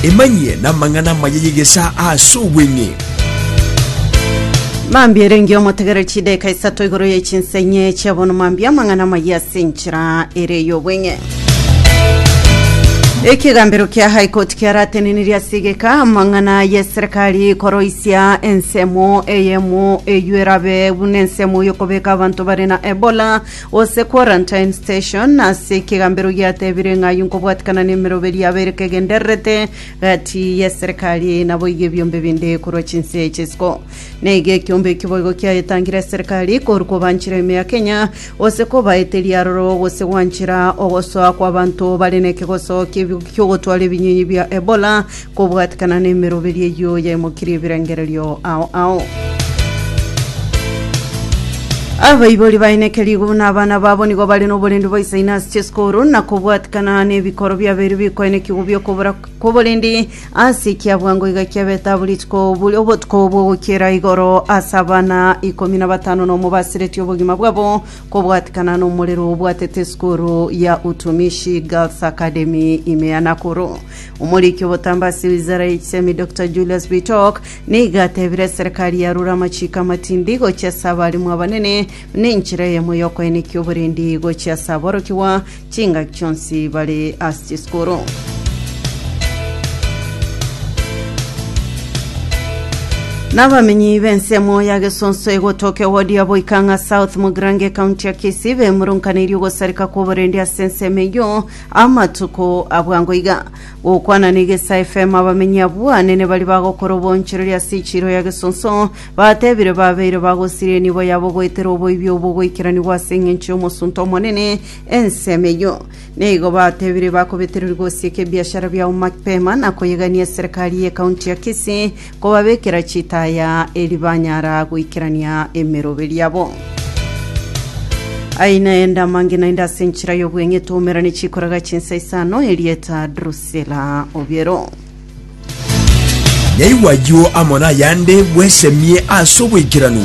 Emanyie namang'ana amaya y'egesaa as'obweng'e. Mambia erenge omotegereri chideka isato igoro ye chinsa enye chia bono mambia amang'ana amaya ase enchera ere y'obweng'e. Ekegambero kia High Court kiaratenenirie ase egeka amang'ana y'eserekari koroisia ensemo eyemo eyio erabe buna ensemo y'okobeka abanto bare na Ebola Gose quarantine station, ase ekegambero giatebire ng'a ayio nkobwatikana nemeroberi yabo ere kegendererete gati y'eserekari eye naboigo ebiombe binde korwa chinse ch'isiko. Naiga ekiombe ekio boigo kiayetangire eserekari korwa kobanchera ime ya Kenya gose kobaeteria aroro gose gwanchera ogosoa kw'abanto bare nekegoso ki'ogotwara ebinyinyi bia Ebola Kobwatekana nemeroberio eyio yaimokirie ebirengererio ao ao. Abaibori baineke rigo buna abana babo nigo bare n'oborendi bwa isaine ase chisukuru na kobwatekana n'ebikoro biabeire bikoenekigwa bi'okobora kw'oborendi ase ekiabwango iga kiabete abo rituko buri obotuko bw'ogokiera igoro ase abana ikomi na batano na omo basiretie obogima bwabo kobwatekana n'omorero obwatete esukuru ya Utumishi Girls Academy ime ya Nakuru. Omoriki obotambe ase ewizara ya echisemi Doctor Julius Bitok nigo atebire eserekari yarure amachiiko amatindi gochia ase abalimu abanene buna enchera eyemo y'okoenekia oborendi gochia ase aborokigwa chingaki chionsi bare ase chisukuru. Nabamenyi b'ensemo ya Gesonso egotoka ewodi ya Boikang'a South Mugirango ecounty ya Kisii bemurunkaneirie ogosareka kw'oborendi ase ensemo eyio Amatuko a bwango iga, gokwana negesa efemo abamenyi abwo anene baria bagokora obonchereri ase echiiro ya gesonso, batebire babeire bagosiria enibo yabo goetera oboibi obwo goikeranigwa ase engencho y'omosunte omonene, ensemo eyio. Na igo batebire bakobetereri gosieka ebiashara biabo mapema na koyegania eserekari y'ekaunti ya Kisii, Kobabekera chitaya eri banyara goikerania emerobe riabo. Ai naende amange naende ase enchera y'obweng'etu omerane chikoraga chinsa isano erieta Drusila Obiero. Naigwa ayio amo nayande bwesemie ase oboikeranu.